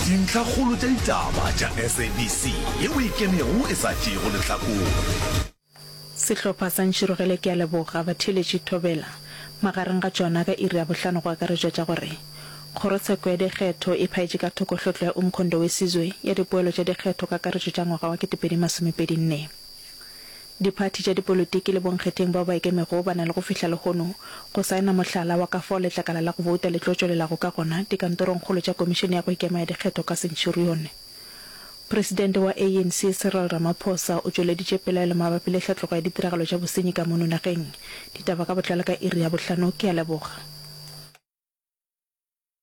Dintlhakgolo tša ditaba tša SABC ye o e kenego e sa tšeego lehlakore. Sehlopha sa Ntšhirogele Ke a Leboga Batheeletši Thobela magareng ga tšona ka iri ya bohlano go akaretšwa tša gore Kgorotsheko ya Dikgetho e phaetše ka thoko hlwehlo ya Umkhonto Wesizwe ya dipoelo tša dikgetho kakaretšo tša ngwaga wa 2024. Diphathi tša dipolotiki le bonkgetheng bao ba ikemego ba na le go fihla lehono go saena mohlala wa ka fao letlakala la go bouta le tlo tšwelelago ka gona dikantorongkgolo tša Komišene ya go Ikema ya Dikgetho ka Centurione. Presidente wa ANC Cyril Ramaphosa o tšweleditše pelaelo mabapi le tlhatlogo ya ditiragalo tša bosenyi ka mono nageng. Ditaba ka botlalo ka iri ya bohlano. Ke a leboga.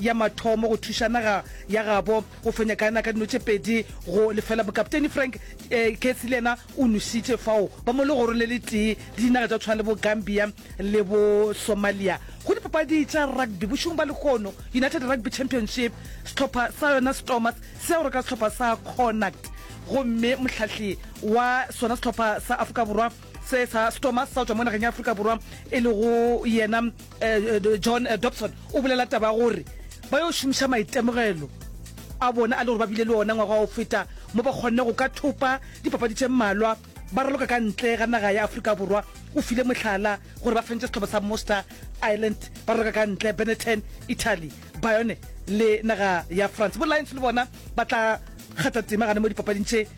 ya mathomo go thuša naga ya gabo go fenya Ghana ka dino tše pedi go lefela. Bokapteini Frank eh, Kessy le yena o nošitše fao ba mo legorong le le tee le dinaga tša go tshwana le bo Gambia le bo Somalia go dipapadi tša rugby bošong ba lehono. United Rugby Championship sehlopha sa yona Stormers se ya go reka sehlopha sa Connacht gomme mohlahli wa sona sehlopha sa Afrika Borwa se sa Stormers sa go tšwa mo nageng ya Afrika Borwa e lego yena eh, eh, John eh, Dobson o bolela taba gore ba yo šomiša maitemogelo a bona a le gore ba bile le ona ngwaga o feta mo ba kgonne go ka thopa dipapadi tše mmalwa ba raloka ka ntle ga naga ya Afrika Borwa o file mohlala gore ba fentse setlhopha sa Moster Island ba raloka ka ntle Benetton Italy Bayonne le naga ya France bo Lions le bona ba tla kgatha tema gane mo dipapading tše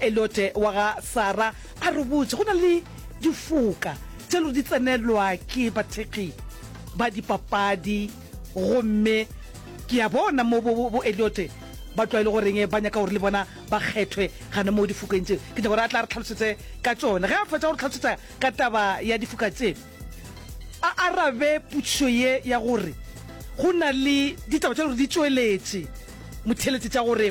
Eliote wa ga Sara a re botša, go na le difoka tše lo di tsenelwa ke bathekgi ba dipapadi gomme ke a bona mo bo bo Eliote ba tlwaele goreng ba nyaka gore le bona ba kgethwe gana mo difokeng tše. Ke nyaka gore a tla re tlhalosetse ka tšone. Ge a fetša go re tlhalosetsa ka taba ya difoka tše, a arabe potšišo ye ya gore go na le ditaba tše lo di tšweletše motheletše tša gore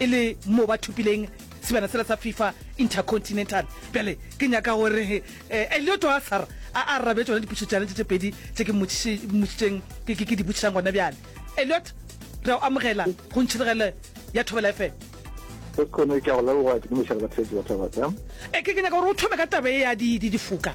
e le mo ba thopileng sebjana sela sa fifa intercontinental bjale ke nyaka gore um eh, elioto a sara a arabe tsona dipušo tšane tše tše pedi tše ke mmošitšeng ke di botšišang gona bjale eliot re o amogela go ntšhiregele ya thobela fm e ke ke nyaka gore o thome ka tabe ya difoka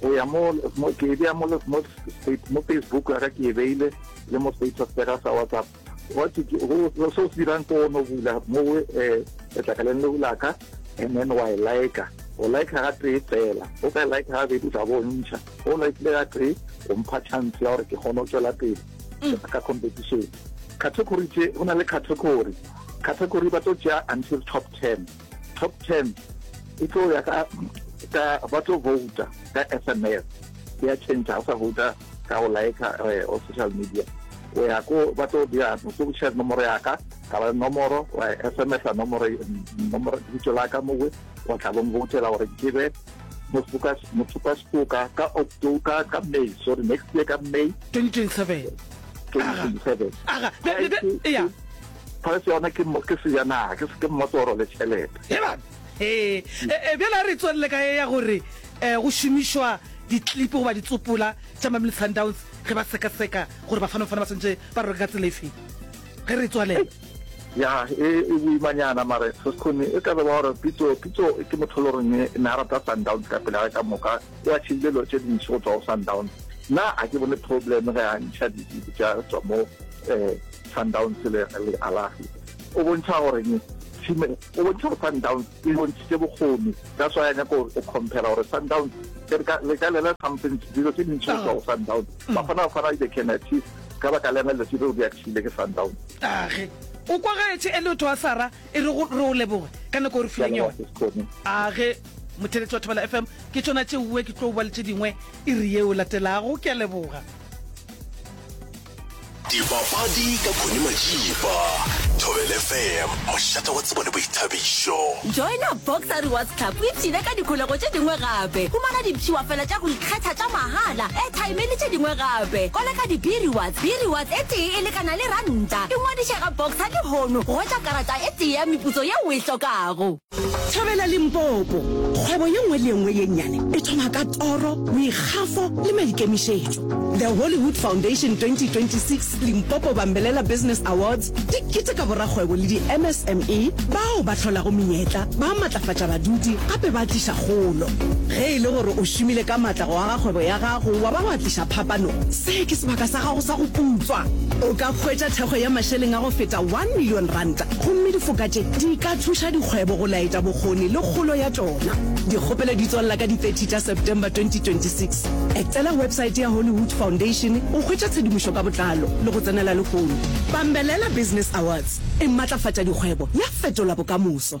go ya mo ke e bea mo facebook ya ka ke e beile le mo status ya ka sa whatsapp go se o se dirang ko ono bula mo eh, letlakaleng leo la ka and then wa e like o like ga tee fela o ka e like ga bedi tla bo ntšha o likile ga tee o mpha chance ya gore ke kgone go tswela pele mm. ka competition category tse go na le category category ba tlo tšea until top ten top ten e tlo ya ka ka ba tlo vouta ka sms ya change o sa vouta ka go like eh, o social media o ya ko ba tlo dira go share nomoro ya ka ka ba nomoro wa sms a nomoro nomoro ditso la ka mo we wa tla bong voutela gore ke be mofuka mofuka sekoka ka october ka may sorry next year ka may 2027 2027 aga be be be ya Price yona ke mo- ke sejanaga ke se- ke mmotoro le tšhelete Ebana ee e, e, bjale a re tswelele ka e ya gore um go šomišwa ditlipi goba ditsopola tša mamile sundowns ge ba sekaseka gore bafanofana ba swantse ba roke ka tsela e feng ge re tswalele ya e e boimanyana mare sesekgone e ka be ba gore pitso pitso ke motho le goreng e ne a rata sundowns ka pele ga ka moka o a tšhile dilo tše dintši go tswa go sundowns nna a ke bone problem ge a ntšha ditlipi tša tswa mo um Sundowns le Al Ahly o bontšha gore ne team o bontšha gore Sundowns e bontšhitše bokgoni ka swa ya nyako o compare gore Sundowns le ka lela something dilo tse dintšhi go tswa go Sundowns ba kgona go fana they can achieve ka baka le yona letsilo di achievile ke Sundowns age o kwa gaetshe e le o thoa sara e re re o leboge ka nako o re fileng yone age motheletši wa thobela fm ke tšona tšeuwe ke tlo bua le tše dingwe e re yeo latelago ke a leboga Dipapadi ka Connie Majiba, Thobel FM, mošata wa tsebo le boithabišo. Joina Boxer Rewards Club o ipshine ka dikholego tše dingwe gape. Humana dipshiwa fela tša go ikgetha tša mahala, airtime le tše dingwe gape. Koleka di-B Rewards, B Rewards e tee e lekana le ranta. Ingwadiše ga Boxer lehono go hwetša karata e tee ya meputso yeo o e hlokago. Thabela Limpopo, Kgwebo ye nngwe le ye nngwe ye nnyane e thoma ka toro, boikgafo le maikemišetšo. The Hollywood Foundation 2026 Limpopo Bambelela Business Awards di keteka borakgwebo le di-MSME bao ba hlolago menyetla, ba matlafatša badudi gape ba tliša kgolo. Ge e le gore o šomile ka matla go aga kgwebo ya gago wa ba wa tliša phapano, se ke sebaka sa gago sa go putswa. O ka hwetša thekgo ya mašeleng a go feta R1 million Gomme difoka tše di ka thuša dikgwebo go laetša bokgoni le kgolo ya tšona. Dikgopelo di tswalela ka di 30 tša September 2026. Etela websaete ya Hollywood Foundation go hwetša tshedimošo ka botlalo le go tsenela lehono. Bambelela Business Awards e matlafatša dikgwebo ya fetola bokamoso.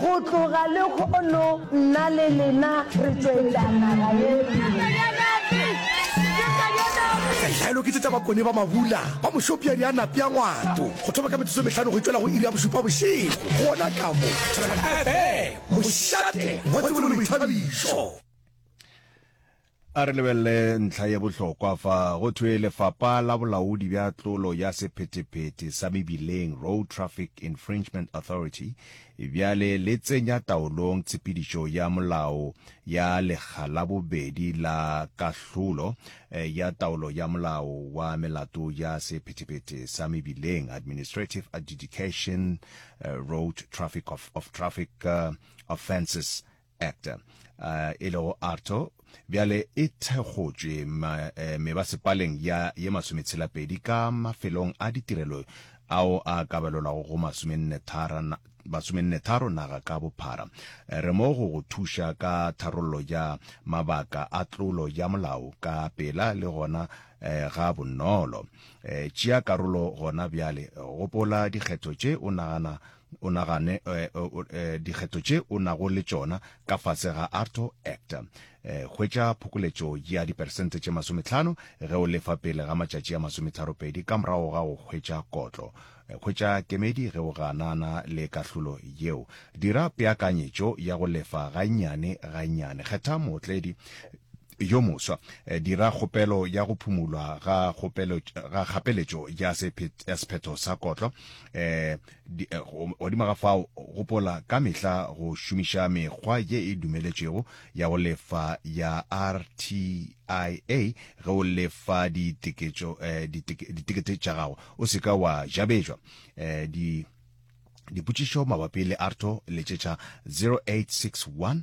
Go tloga lehono nna le lena re tšwetša naga ye pele. Tlhaelo ke tše tša bakone ba mabula ba mošopiadi a napea ngwato go thoma ka metsotso e mehlano go e tšwela go iri ya bošupa bošego. Gona ka mo Thobela FM, mošate wa tsebo le boithabišo. A re lebelele ntlha ye bohlokwa fa. Go thwe Lefapa la Bolaodi bja Tlolo ya Sephetephete sa Mebileng, Road Traffic Infringement Authority, bjale le tsenya taolong tshepedišo ya molao ya lekga la bobedi la kahlolo ya taolo ya molao wa melato ya sephetephete sa mebileng, Administrative Adjudication, Road Traffic of, of Traffic Offences Act uh, e lego ARTO bjale e thekgotšwe eh, mebasepaleng ya ye masometshela-pedi ka mafelong a ditirelo ao a kabelelwago go masomennetharo naga ka bophara eh, re mo go go thuša ka tharollo ya mabaka a tlolo ya molao ka pela le gona eh, ga bonolo eh, tšea karolo gona bjale gopola dikgetho tše o nagana o nagane eh, eh, dikgetho tše o nago le tšona ka fase ga arto act um eh, hwetša phokoletšo ya diperesente tše masometlhano ge o lefa pele ga matšatši a masometharopedi ka morago ga go hwetša kotlo hwetša kemedi ge o ganana le kahlolo yeo dira peakanyetšo ya go lefa gannyane gannyane kgetha mootledi yo moswa eh, dira kgopelo ya go phumulwa ga kgapeletšo ya sephetho sa kotlo um Eh, godimo ga fao gopola ka mehla go šomiša mekgwa ye e dumeletšwego ya go lefa ya rtia ge o lefa eh, ditekete tša gago o se ka wa jabetšwa eh, di dipotšišo mabapi le arto letšetša 0861